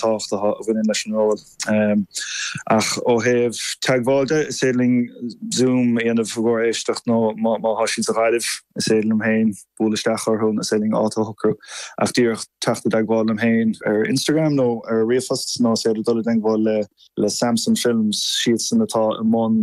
tábhachtacha a bhaineann leis an ról. Ach ó thaobh teagmháil de, is féidir linn Zoom a dhéanamh i gcomhair éisteacht nó má tá siad sa Ghaillimh, is féidir liom féin bualadh isteach orthu nó is féidir linn áit a shocrú. Ach díreach teacht i dteagmháil liom féin ar Instagram nó ar ríomhphost nó is féidir dul i dteagmháil le Samson Films, siadsan atá i mbun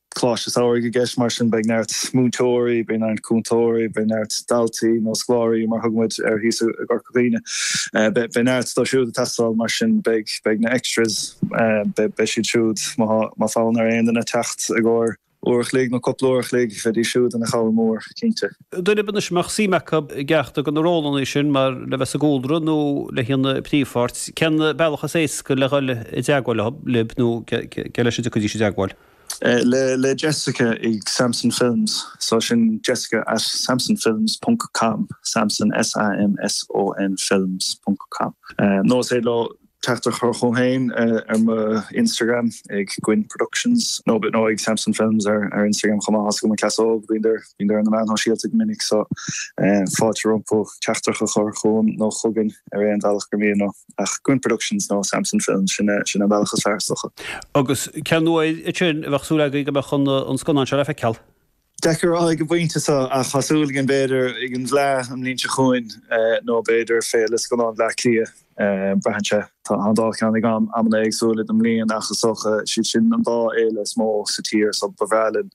Coláiste Samhraidh i gceist, mar sin beidh neart múinteoirí, beidh neart cúntóirí, beidh neart daltaí, nó scoláirí mar thug muid air thíos i gCorca Dhuibhne. Beidh neart dóibh siúd ag teastáil, mar sin beidh na extras, beidh siad siúd, má tá fonn ar aon duine teacht i gcomhair uair a chloig nó cúpla uair a chloig, bheidís siúd ina chabhair mhór, cinnte. Daoine anois a mbeadh suim acu i gceachtar de na rólanna sin, mar le bheith sa gcúlra nó le haon phríomhpháirt, cén bealach is éasca le dhul i dteagmháil libh nó cé leis a dtiocfaidís i dteagmháil? le Jessica ag Samson Films, so sin Jessica at samsonfilms ponc com, Samson, S-A-M-S-O-N, Films ponc com, nó is féidir leo teachtaireacht a chur chugam féin ar mo Instagram ag Goinn Productions, nó nó ag Samson Films ar ar Instagram chomh maith is is muid an cleas óg, bímid ar bímid ar na meáin shóisialta go minic, so fáilte rompu teachtaireacht a chur chugam nó chugainn ar aon bhealach gur mian leo. ach Goinn Productions nó Samson Films, sin é an bealach is fearr is dócha. Agus cén uair ansin a bheadh súil againn go mbeadh an scannán seo le feiceáil? Deacair a rá ag an bpointe seo, ach tá súil againn b'fhéidir ag an bhFleadh an bhliain seo chugainn nó b'fhéidir Féile Scannán Bhleá Cliath, braitheann sé. Tá an dá cheann ag am, amanna éagsúla den mbliain ach is dócha siad sin an dá fhéile is mó sa tír so ba bhreá linn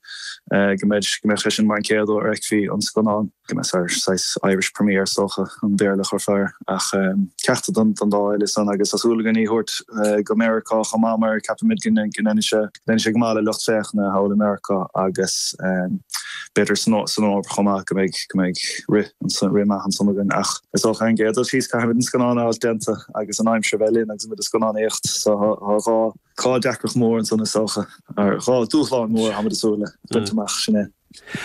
go mbeadh sé sin mar an chéad uair a fheicfí an scannán. Go mba é an saghas Irish Premier is dócha an Béarla a chuirfeá air, ach ceachtar den dá fhéile san, agus tá súil againn í a thabhairt go Meiriceá chomh maith mar ceapaimid go ndéanann sé go maith le lucht féachana thall i Meiriceá agus b'fhéidir san Eoraip chomh maith, go mbeidh rith maith ansan againn. Ach is dócha ar an gcéad dul síos caithfimid an scannán a fháil déanta agus an aimsir a bheith linn agus muid ag scannánaíocht so tá dhá deacracht mhór ansan is dócha, dhá dúshlán mhór atá muid ag súil le baint amach, sin é.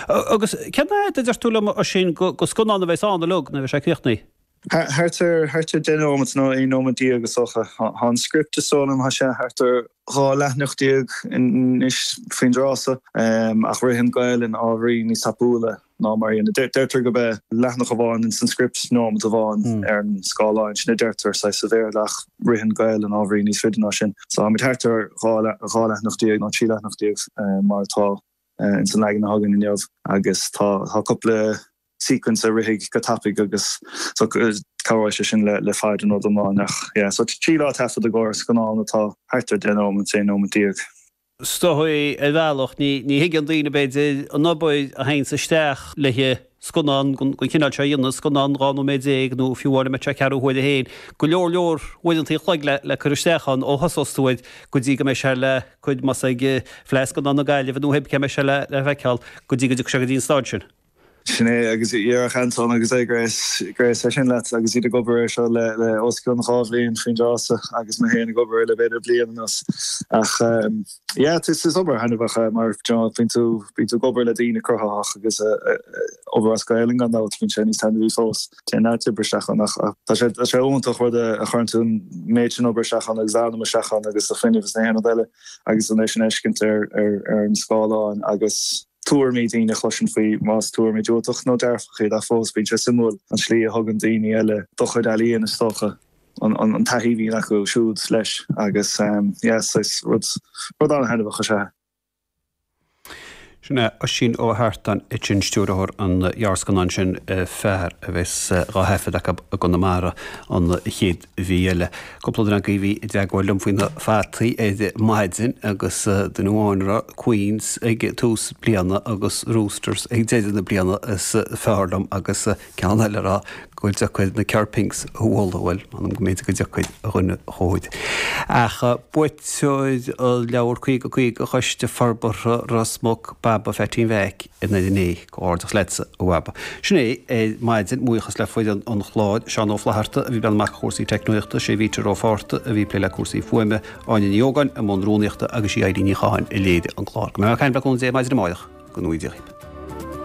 Agus cén fhaid a deir tú liom, Oisín, de scannán a bheas ann uilig nuair a bheidh sé críochnaithe? Thart ar deich nóimeat, nó aon nóimeat déag is dócha. Tá an script, is dóigh liom, tá sé thart ar dhá leathanach déag anois faoin dtráthso, ach ritheann Gaelainn ábhairín níos tapúla ná mar a deirtear gurb é leathanach amháin ins an script nóimeat amháin ar an scáileáin, sin a deirtear, saghas, sa Bhéarla, ach ritheann Gaelainn ábhairín níos faide ná sin. So, táimid thart ar dhá leathanach déag nó trí leathanach déag mar atá. ins an leagan atá againn inniu agus tá cúpla sequence a rithfidh go tapaidh agus cabhróidh sé sin le fad an rud iomláin ach yeah so trí lá taifead i gcóir scannán atá thart ar deich nóimint, aon nóimint déag. Is dóigh ar bhealach, ní thuigeann daoine b'fhéidir an obair a théanns isteach léi. scannán den chineál seo a dhéanamh, scannán 12 nóiméad nó fiú amháin dá mbeadh sé ceathrú huaire féin, go leor leor uaireanta an chloig le cur isteach ann ó thosós tú air go dtí go mbeidh sé le, cuir, más ag Fleadh Scannán na Gaillimhe nó cibé cá mbeidh sé le feiceáil, go dtí go dtiocfaidh sé go dtí an stáid sin. Sin é, agus déarfadh Anton agus Grace é sin leat agus iad ag obair air seo le os cionn dhá bhliain faoin dtráth so agus mé féin ag obair air le b'fhéidir bliain anuas ach, Yeah, tis is obair thaitneamhach mar bíonn tú bíonn tú ag obair le daoine cruthaitheach agus obair as Gaelainn gan dabht bíonn sé níos taitneamhaí fós. Téann a lán oibre isteach ann ach tá sé tá sé iontach rud a chuireann tú an méid sin obair isteach ann agus anam isteach ann agus fuinneamh is gach aon rud eile agus é sin a fheiscint ar ar ar an scáileán agus tuairimí daoine a chloisint faoi más tuairimí diúltach nó dearfach iad ach fós bíonn sé suimiúil an tslí a thógann daoine eile do chuid ealaíon is dócha. an taithí a bhíonn acu siúd leis agus yeah saghas rud, rud an-thaitneamhach is ea é. Sin é Oisín Ó hAirt ansin, stiúrthóir an ghearrscannáin sin Fear, a bheas dhá thaifead acu i gConamara an chéad mhí eile. Cúpla duine agaibh a bhí i dteagmháil liom faoi na fataí ar maidin agus duine amháin ag rá Queens ag tús bliana agus Roosters ag deireadh na bliana is fearr liom agus ceann eile ag rá gur deacair na Kerr Pinks a bhualadh, bhuel, m'anam go mb'fhéidir gur deacair, a dhuine chóir. Ach buaiteoir an leabhair 50 50 Choiste Forbartha Ros Muc, Baba Pheaitín Mheaic, i nDoire an Fhéich. Comhghairdeas leatsa, a Bhaba. Sin é, ar maidin, buíochas le foireann an chláir, Seán Ó Flaithearta, a bhí ag breathnú amach do chúrsaí teicneoireachta, sé Peter Ó Fátharta, a bhí ag plé le cúrsaí fuaime, Áine Ní Ógáin, i mbun rúnaíochta, agus í Éirín Ní Chatháin a léirigh an clár. Go mbeidh mé ag caint aríst libh ar maidin amárach. Go nuige.